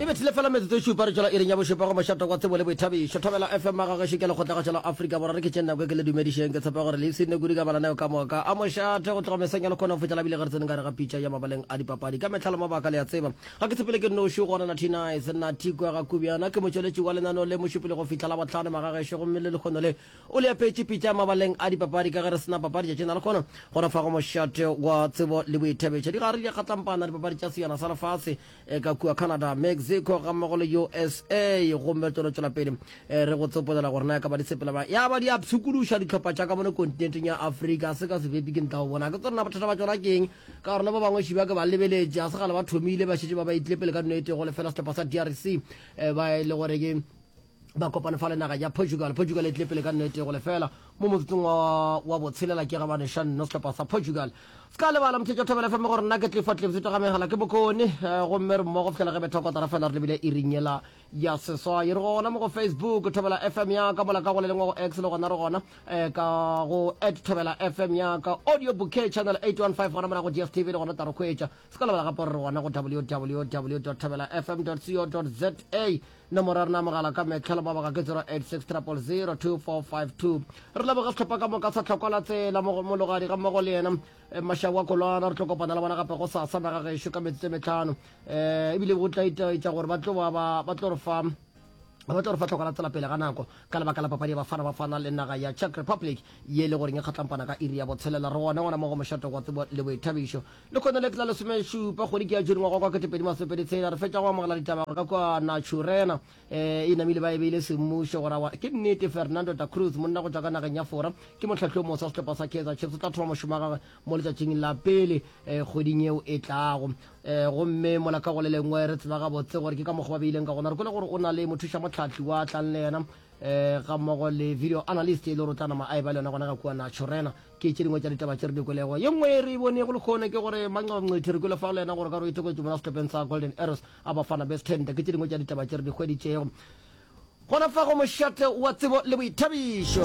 e bethile fela metsotso e šupa re tšwela iring ya bošupa go mošato kwa tsebo le boithabišo thobela fm magagešo ke lekgotlagatšo la afrika borwa re ke tšeng nako e ke le dumedišeng ke tshepa gore leipsene ne kudu ka mananeo ka moka a mošate go tloga meseng ya lekgona go fetša labile ge re tseneng ka re ga pitša ya mabaleng a dipapadi ka metlha le mabaka le ya tseba ga ke tshepele ke noši gona na tinice na tikwa ga kubjana ke motšweletši wa lenaneo le mošupile go fihla la botlhano magagešo gomme le lekgono le O le apetše pitša mabaleng a dipapadi ka ge re se na papadi tšatšing la lekgono. Go re fa go mošate wa tsebo le boithabetšo. Di gare di a kgatlampana dipapadi tša sejana sa lefase ka kua Canada, Mexico gammogo le USA gomme tlo no tšwela pele re go tsopolela gore na ekaba di sepela bjang. Ya ba di a pshikološa dihlopha tša ka mono kontinenteng ya Afrika. Se ka sefepi ke ntla go bona ke tsona bothata bja tšona keng ka rona ba bangwe šiba ke ba lebeletše. Ga se kgale ba thomile ba šetše ba ba itile pele ka nnete go lefela sehlopha sa DRC ba e le gore ke ba kopane fa le naga ya portugal portugal e tle pele ka nnete go lefela mo motsotsong wa botshelela ke ga ba nešan no setlhopha sa portugal se ka lebala mothetša thobela fm gore nna ke tle fa tlebse tega megala ke bokone eh, gomme re mmogo fihlela ge betho kotara fela re lebile e rinyela ya seswai re gona mo go facebook thobela fm ya ka mola ka go le lengwe go x le gona re gona eh, ka go at thobela fm ya ka audio bouquet channel 815 gona mola go dstv le gona taro kgwetša se ka lebala gape gore re gona go www thobela fm co za Nomoro ya rena ya mogala ka mehla le babaga ke 0860002452. Re leboge setlhopha ka moka sa tlhokwala tsela mo- mologadi ga mmogo le yena eh, mashago wa kolwana re tlo kopana le bona gape go sasa naga gešo ka metsotso e metlhano um ebile go tla itaetša gore ba tlo ba- ba ba tlo re fa ba tlo re fa tlhokwana tsela pele ga nako ka lebaka la papadi ya bafana bafana le naga ya czech republic ye e le goreng e kgatlampana ka iri ya botshelela re one gona mo go mošato wa tsebo le boithabišo Lekgotla le tla lesomešupa kgwedi ke ya June ngwaga wa kwa ketepedi masopedi tshela re fetša go amogela ditaba gore ka kwa Naturena e e namile ba e beile semmušo gore awa ke nnete Fernando da Cruz monna go tšwa ka nageng ya Fora ke mohlahli o moswa sehlopha sa Kaizer Chiefs o tla thoma mošomo wa gagwe mo letšatšing la pele eh, kgweding yeo e tlago eh, gomme mola ka go le lengwe re tseba gabotse gore ke ka mokgwa ba beileng ka gona re kwele gore o na le mothuša mohlahli wa tlang le yena um gammogo le video analyst e le gore o tla nama a e ba le yona gona ga kua Naturena. Ke tše dingwe tša ditaba tše re di kwelego. Ye nngwe e re e bonego lehono ke gore Manqaba Mngqithi re kwele fa go le yena gore ka re o itokoletše mola sehlopeng sa Golden Arrows, a Bafana Best Tender. Ke tše dingwe tša ditaba tše re di hweditšego gona fa go mošate wa tsebo le boithabišo.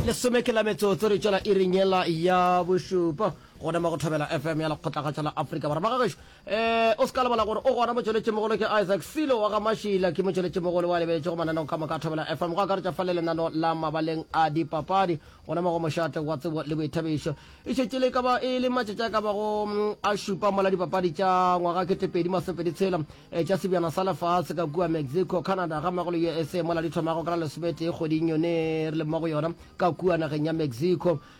Lesome ke la metsotso re tšwela iring yela ya bošupa gona mo go Thobela FM ya Lekgotlagatšwa la Afrika Borwa. Ba ga gešo Ee, o se ka lebala gore o gona motšweletšimogolo ke Isaac Silo wa ga Mašila. Ke motšweletšimogolo wa lebeletše go mananeo ka moka a Thobela FM, go akaretša fa le lenano la mabaleng a dipapadi, gona mo go Mošate wa Tsebo le Boithabišo. E šetše le ka ba e le matšatši a ka bago a šupa mola dipapadi tša ngwaga ketepedi masopedi tshela eh, tša sebjana sa lefase ka kua Mexico, Canada ga mmago le USA mola di thomago ka la lesometee kgweding yone re le mo go yona ka kua nageng ya Mexico.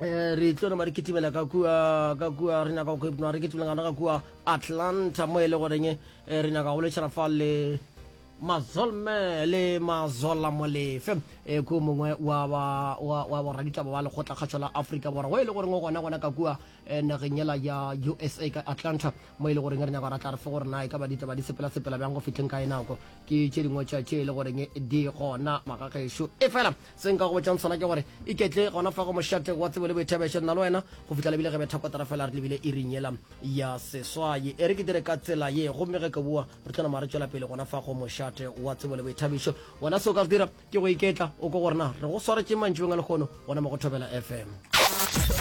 Eh, re tlo rema re kitimela ka kua ka kua re nyaka go re kitimela gana ka kua atlanta mo e le goreng eh, re nyaka go letšhela fa le mazolme le mazola molefe e ko mongwe wa boraditaba ba lekgotlakgatšo la aforika borwa go e le goreng o gona gona ka kua eh, nageng ela ya usa ka atlanta mo e le goreng re nyaka ra tla re fe gore na e ka ba ditaba di sepela-sepela bjang go fitlheng ka e nako ke tše dingwe tša tše e le goreng di gona magagešo e fela Se nka go botšang sona ke gore iketle gona fa go mošate wa tsebo le boithabeše nna le wena go fihla lebile re betha kotara fela re lebile e rinyela ya seswaye e re ke dire ka tsela ye gomme ge ke boa re tlo nama re tšwela pele gona fa go mošate wa tsebo le boithabišo wena se o ka se dira ke go iketla o ko gorena re go swaretše mantšibeng a lekgono gona mo go thobela fm